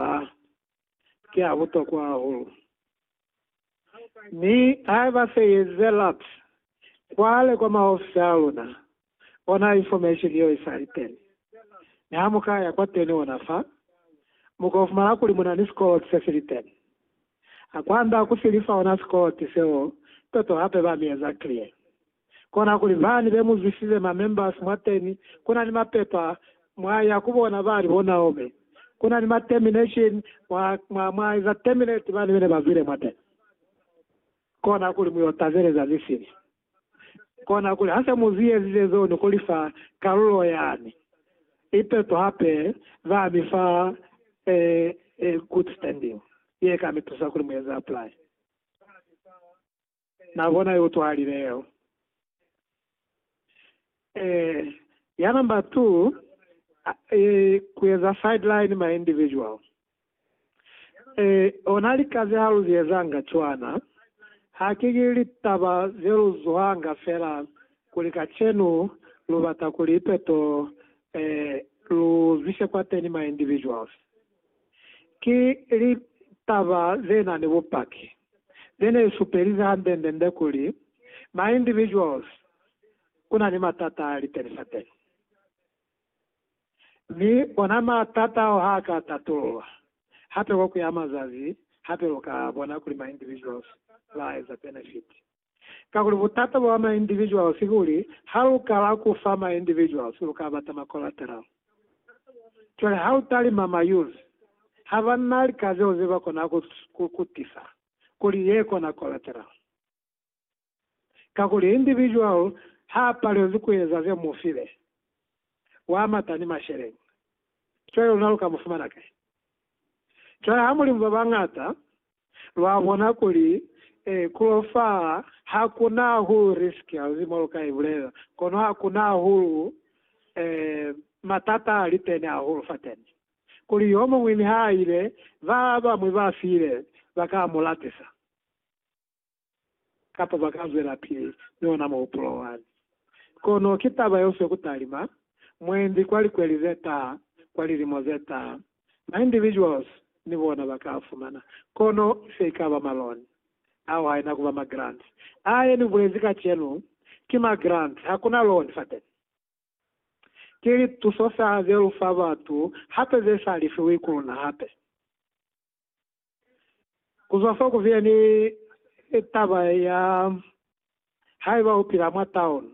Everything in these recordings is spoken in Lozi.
A ki a butokwa hahulu. Mi ha ba feyezela cwale kwa maofisi a luna, bona information yeo isali teni. Mi ha mu ka ya kwateni ona fa, mu ko fumana kuli muna ni sikoloti se sili teni. Ha kwanda ku si lifa ona sikoloti seo, toto hape ba mi eza clear. Kona kuli bani be muzwisize ma members mwateni kuna ni mapepa mwa ya kubona bali bo Naomi kuna ni ma termination mwa mwa mwa eza terminate bani bene ba zwile mwateni kona kuli muyo tazeleza zisili kona kuli hase muzi ezize zo ni kulifa kalulo yani ipeto hape ba mi fa e e good standing ye ka mi tusa kuli mu eze apply Na bona yo utwahalile yeo. Eh, ya number two, a, eh, kueza sideline ma individual. Eh, ona lika ze haluziezanga cwana, haki ki litaba ze lu zuhanga fela kuli kacenu lu bata kuli ipeto, eh, lu zwise kwateni ma individuals. Ki litaba ze na ni bupaki ze ne supelize hande-nde-nde kuli ma individuals ku na ni matata a liteni-sateni, mi ona matata ao ha ka tatululwa hape ko ku ya mazazi, hape lu ka bona kuli ma individuals ba eza benefit. Kakuli butata bwa ma individuals kuli ha lu kala ku fa ma individuals lu ka bata ma collateral. Cwale ha u talima ma youth ha ba na lika zeo ze ba kona ku ku tisa kuli ye kona collateral. Kakuli individual ha a palezi ku eza ze mu file, wa mata ni masheleñi. Cwale luna lu ka mu fumana kai? Cwale ha mu li mu ba bañata, Lwa bona kuli, ee, ku lo fa ha ku na hahulu risk hauzi mo lu ka i bulela, kono ha ku na hahulu ee, matata a li teni hahulu fateni. Kuli yo muñwi niha a ile, ba bañwi ba file ba ka mu lapisa. kapa ba ka zwelapili ni ona muhupulo wani. Kono ki taba yeo se ku talima mwendi kwa likweli ze taha, kwa lilimo ze taha. Ma individuals ni bona ba ka a fumana, kono se i ka ba ma loan. Ao haina ku ba ma grant. A ye ni bulezi kacenu ki ma grant, ha ku na loan fateni. Ki lituso fela ze lu fa batu, hape ze sa lifiwi ku luna hape. Ku zwa fo ku viya ni taba ya Haiba U Pila mwa Taolo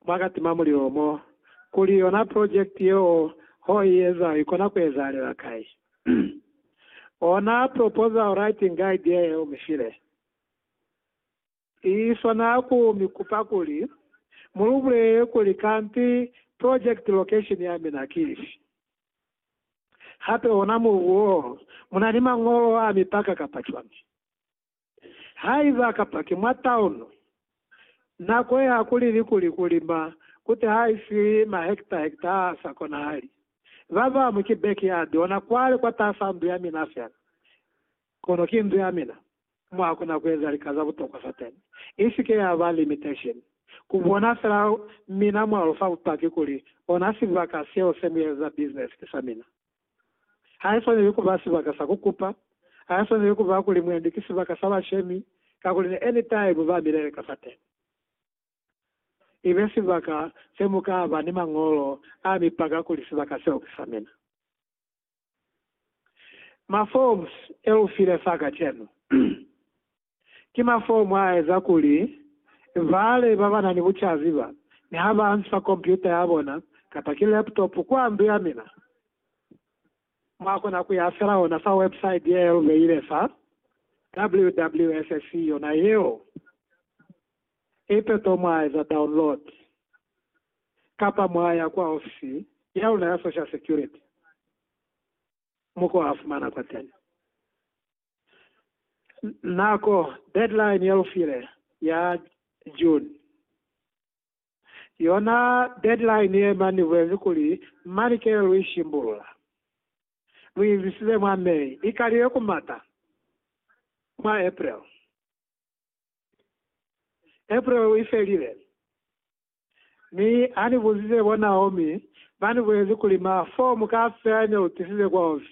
mwa ka Tima Mulilo mo, kuli yona project yeo ho i eza ikona ku ezahalela kai. Ona proposal writing guide ye u mi file. I swana ku mi kupa kuli mu lu bulele kuli kanti project location ya mina ki ifi. Hape ona mubu wo mu na ni mañolo a mipaka kapa cwañi? Haiba kapa ki mwa town, nako ye ha ku lili kuli ku lima ku teha ifi ma hecta hecta a sa konahali. Ba bamu ki backyard ona kwale kwatasa ndu ya mina fela. Kono ki ndu ya mina. mo ha kona ku eza lika za butokwa za teñi. I si ke ya ba limitation ku bona fela mina mwa lu fa bupaki kuli ona sibaka seo se mu eza business ki sa mina. Ha i swaneli ku ba sibaka sa ku kupa, ha i swaneli ku ba kuli mwendi ki sibaka sa bashemi, kakuli ni anytime ba mile lika fa teñi. I be sibaka se mu ka ba ni mañolo a mi paka kuli sibaka seo ki sa mina. Maforms eufile fa kacenu ki maform aeza kuli vale babanani bucazi ba ni ha ba nsa kompyuta yabona kapa ki laptop kwa ndu ya mina, mwakona kuya fela ona fa website yeelubeile fa WWSC yona yeo ipe to mwaeza download. kapa mwa ya kwa ofisi ya luna ya Social Security mo ko a fumana kwa teñi nako. Deadline ya lu file ya June, yona deadline ye mani ni bulezi kuli mani kele lu i shimbulula. Lu i zwisile mwa May, i kalile ku mata mwa April. April i felile. Mi hanibuzize bo Naomi, banibuelezi kuli, Ma, foo muka fela ne utisize kwa ofi?